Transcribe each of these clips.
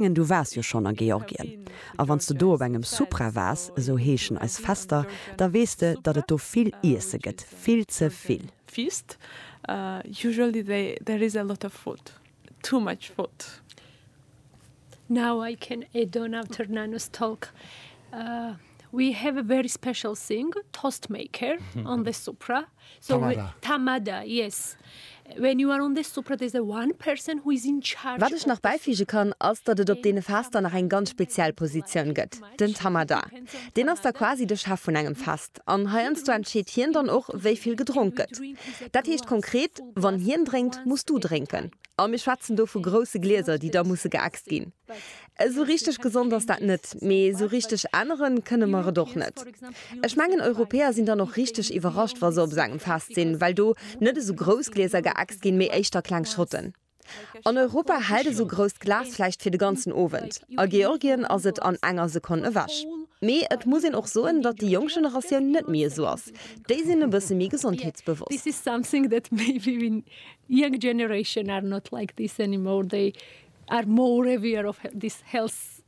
mengen du waars jo schonn a Georgien, a wann s de do op engem Supra waars, esou heeschen eis Fester, da weess de datt et do vill Iesse gëtt, vill ze vill. Feast, Usually there is a lot of food, too much food. Now I can, e Donau Turnanus talk. We have a very special thing, toast maker on the supra. So we- Tamada. Tamada, yes. When you are on the supra, there's a one person who is in charge. Wat ech nach bäifüge kann, ass, datt et op deene Fester nach eng ganz speziell Positioun gëtt, den Tamada. Deen ass da quasi de Chef vun engem Fest an heiansdo entscheet hien dann och, wéi vill gedronk gëtt. Dat heescht konkret, wann hien drénkt, muss du drénken. A mir schwätzen do vu grousse Glieser, déi da musse geäxt ginn. Esou richteg gesond ass dat net, mee esou richteg ännere kënne mer et och net. Ech mengen, Europäer sinn dann och richteg iwwerrascht, wa se op esou engem Fest sinn, well do net esou grouss Glieser geäxt ginn, mee éischter kleng Schotten. An Europa hält esou grousst Glas vläicht fir de ganzen Owend, a Georgien ass et an enger Sekonn ewech. Mee et muss een och soen, datt déi jonk Generatioun net méi esou ass, déi sinn e bësse méi gesondheetsbewosst. are more aware of this health.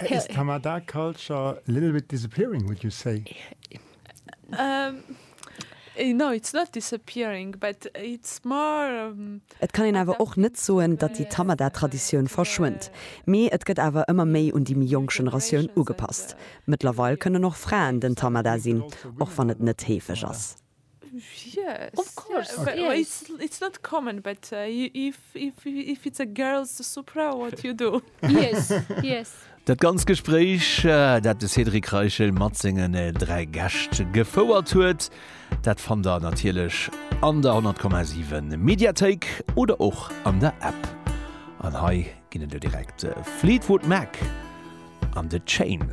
Is Tamada culture a little bit disappearing, would you say? Um, no, it's not disappearing, but it's more. Et kann een awer och net soen, datt déi Tamada-Traditioun verschwënnt, mee et gëtt awer ëmmer méi un déi méi jonk Generatioun ugepasst. Mëttlerweil kënnen och Fraen den Tamada sinn, och wann et net heefeg ass. Yes. Of course. Yeah, okay. Well it's, it's not common, but uh, if, if, if it's a girl's supra, what you do? yes, yes. Dat ganz Gespréich, äh, dat de Cédric Reichel mat sengen äh, dräi Gäscht gefouert huet, dat fannt der natierlech an der 10,7 Mediathéik oder och an der App. An hei ginn et jo direkt äh, Fleetwood Mac an The Chain.